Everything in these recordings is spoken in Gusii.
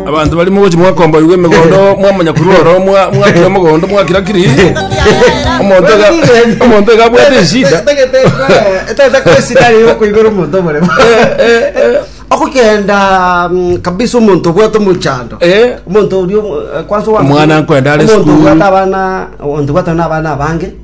abanto bari mogochi mwakomboigwa emegondo mwamanya kurwa oro mwa- mwakira omogondo mwakira kiri omonto iga- omonto iga abwate eshida okogenda mm, kabisa omonto obwate omochando Eh, omonto orio eh, kwanza owa- Omwana nkwenda are omonto school. obwate abana omonto obwate na abana abange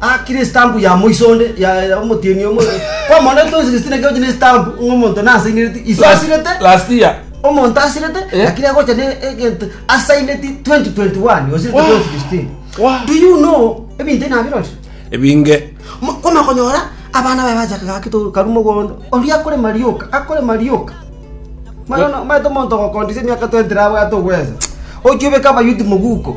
Akire estampu ya moiso onde ya ya omotienyi omo kwamona ase toisi Justina ekegochi na estampu ng'a omonto nasainereti iso asirete Last year. omonto asirete Eh. lakini agocha ne egento asaineti 2021 osirete Wah. toisi Justina Wah. do you know ebinto ebi nabirore Ebinge. Mo- koma konyora abana baye bachaka gaki to karu mogondo oria akorema rioka akorema rioka Mara no- maete omonto ogokondisia emiaka 20 rabwate ogwesa ochi obeke abayuti moguko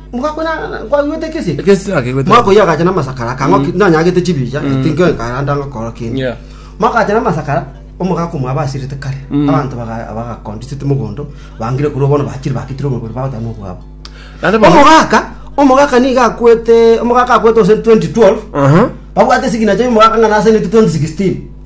Mokakwana kwaigwete ekesi eke? Ekesi tinakeigwete. Mwaka oyio agacha namasakara akang'oki nanyagete chibicha tinko enkaranda ngokora kende. Yeah. Mwaka agacha namasakara omogaka omwa abasirete kare abanto baga- bagakondisete mogondo bangire korwa bono bachire baketire oborobori bagoteba nobwabo. Naende bono- Omogaka omogaka niga akwete omogaka akwete gose 2012 Aha. babwate signature ya omogaka ng'a nasainete 2016.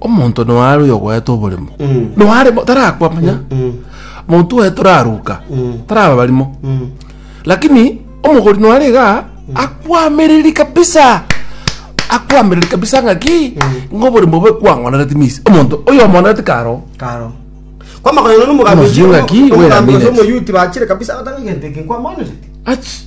Omonto noare oyogoeta oborimo noare bo- tarakwa manya monto oye toraruka taraba barimo lakini omogori noare iga akwamereri kabisa akwamereri kabisa ng'aki ng'a oborimo obe kwang'onereti misi omonto oyomoonereti karo karo kwamakonyana Omosinga ki, wera minutes. nomogambichiomoyuti bachire kabisa agoteba egento eke nkwamonerete achi